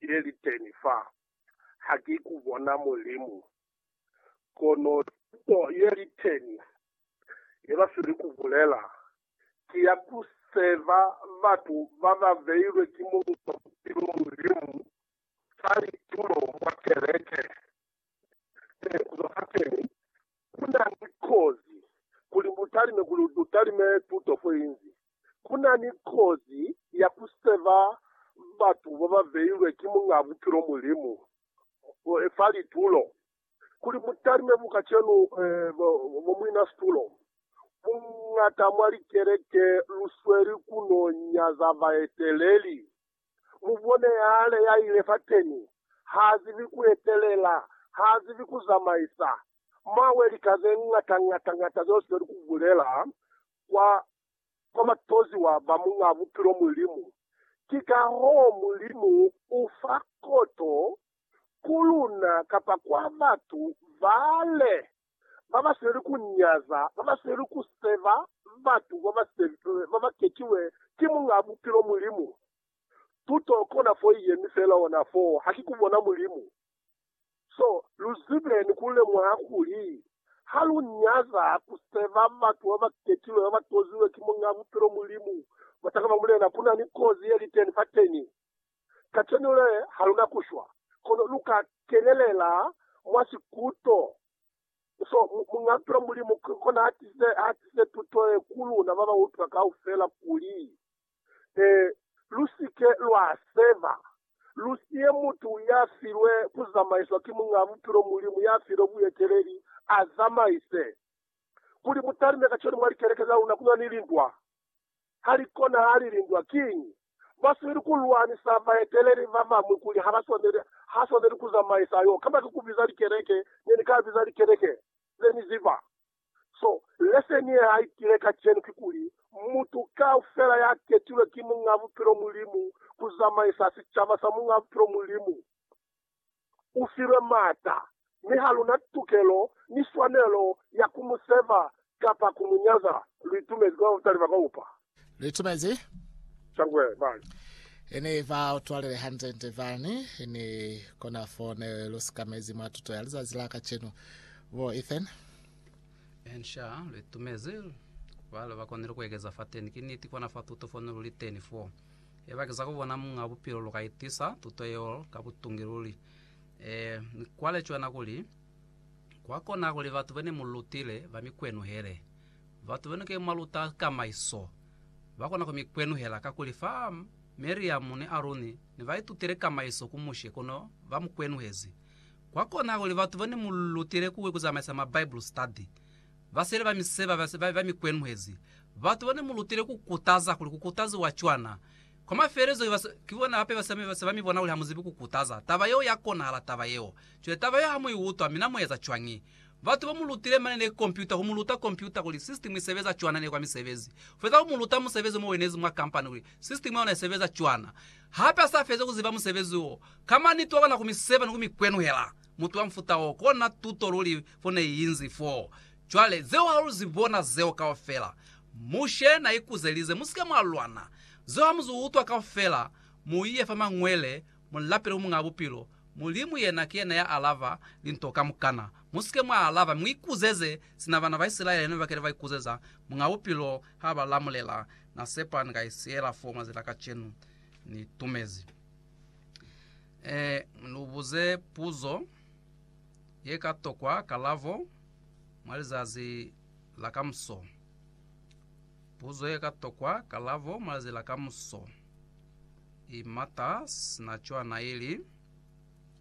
ye li teni fa, ha ki ku bona Mulimu. Kono tuto ye li teni ye ba sweli ku bulela, ki ya ku seva batu ba ba beilwe ki Muñ'a Bupilo Mulimu fa litulo mwa keleke Ee, kuzwa hateñi, kunani kozi kuli mutalime, kuli utalime tuto foinzi. Kunani kozi ya kuseva batu bababeilwe ki Muñaa Bupilo Mulimu fa litulo, kuli mutalime bu kacenu bo muina situlo. Buñata mwa likeleke lusweli kuno nyaza baeteleli. Mubone hale yaile fateni, haazibi kuetelela, haazibi kuzamaisa. Mwawe lika zeñata ñata ñata zeo sizeli kubulela kwa, kwa batoziwa ba Muñaa Bupilo, Mulimu. Ki kahoo Mulimu ufa koto ku luna kapa kwa batu bale. babasweli kunyaza, babasweli kuseba batu babakekiwe ki Muñaa Bupilo, Mulimu. Tuto kona fo iyemi feela ona foo, haki kubona Mulimu. So, luzibe ni kulemuha kuli, halunyaza kuseba batu babakekilwe babatoziwe ki Muñaa Bupilo, Mulimu, batanga ba Mulena, kunani kozi yeliteni fateni. Kacenu le, ha lu na ku shwa, kono lu ka kenelela mwa sikuto so Muñ'a-Tulo Mulimu ki kona ha tisize, ha tisize tuto ye ku luna ba ba utwa kaufela, kuli, Ee, lu si ke lwa seba, lu siye mutu ya filwe ku zamaiswa ki Muñ'a-Buphilo Mulimu ya filwe bueteleli, a zamaise. Kuli mu talime kacenu mwa likeleke za luna ku na ni lintwa. ha li konahali lindwa. Kiñi? Ba swaneli ku lwanisa baeteleli ba bañwi kuli ha ba swaneli, ha swaneli ku zamaisa yo, kamba ki ku biza likeleke. Ne ni ka biza likeleke ze ni ziba. So, leseni ye ha i tile kacenu kikuli, mutu kaufela ya ketilwe ki Muñ'a Bupilo Mulimu ku zamaisa sicaba sa Muñ'a Bupilo Mulimu, u filwe maata, mi ha lu na tukelo ni swanelo ya ku mu seva kapa ku mu nyaza. Lu itumezi kwa batali ba kaupa. Lu itumezi. Shangwe bani. E ne ba utwalile hande-nde bani, ni kona foo ne lu sikamezi mwa tuto ya lizazi la kacenu. Bo Ethan. Ensha, lu itumezi. Bale ba konile ku ekeza fateni. Ki niti, kona fa tuto fo ne lu li teni foo. Eba ki za ku bona Muñ'a Bupilo lu ka itisa tuto yeo ka butungi luli. E, mi kwa lecwana kuli, Kwa kona kuli batu be ne mu lutile ba mi kwenuhele. Batu be nu ke mwa luta ka maiso ba kona ku mi kwenuhela, kakuli fa Miriamu ni Aruni ne ba itutile ka maiso ku Mushe, kono ba mu kwenuhezi. Kwa kona kuli batu be ne mu lutile ku zamaisa ma Bible study Basele ba mi seba ba mi kwenhwezi. Batu ba ne mu lutile ku kutaza kuli ku kutaziwa cwana. Kwa mafelelezo ki bona hape ba se ba mi bona kuli ha mu zibi ku kutaza. Taba yeo ya konahala taba yeo. Cwale taba yeo ha mu i utwa, mi na mu eza cwañi? Batu ba mu lutile mane ne kompyuta, ku mu luta kompyuta kuli sisitimu i sebeza cwana ne kwa misebezi. Ku feza ku mu luta musebezi mo wenezi mwa kampani kuli sisitimu ya ona i sebeza cwana. Hape ha sa fezi ku ziba musebezi wo, kama niti wa kona ku mi seba ni ku mi kwenhwela. Mutu wa mfuta wo, kona tuto luli fo ne i inzi fo. Cwale, zeo ha lu zi bona zeo kaufela. Mushe na ikuzelize, Musike mwa lwana. Zeo ha mu zu utwa kaufela, mu ye fa Mañwele, mu lapele ku Muñaa Bupilo. Mulimu yena ki yena ya alaba linto kamukana. Musike mwa alaba, mi mu ikuzeze sina bana ba Isilaele ne ba kile ba ikuzeza. Muñaa Bupilo ha ba lamulela. Na sepa ni ka i siyela foo mwa zila kacenu. Ni tumezi. Ee, lu buze puzo ye ka tokwa kalabo mwa lizazi la kamuso. Puzo ye ka tokwa kalabo mwa lizazi la kamuso i mata sina cwana, ili,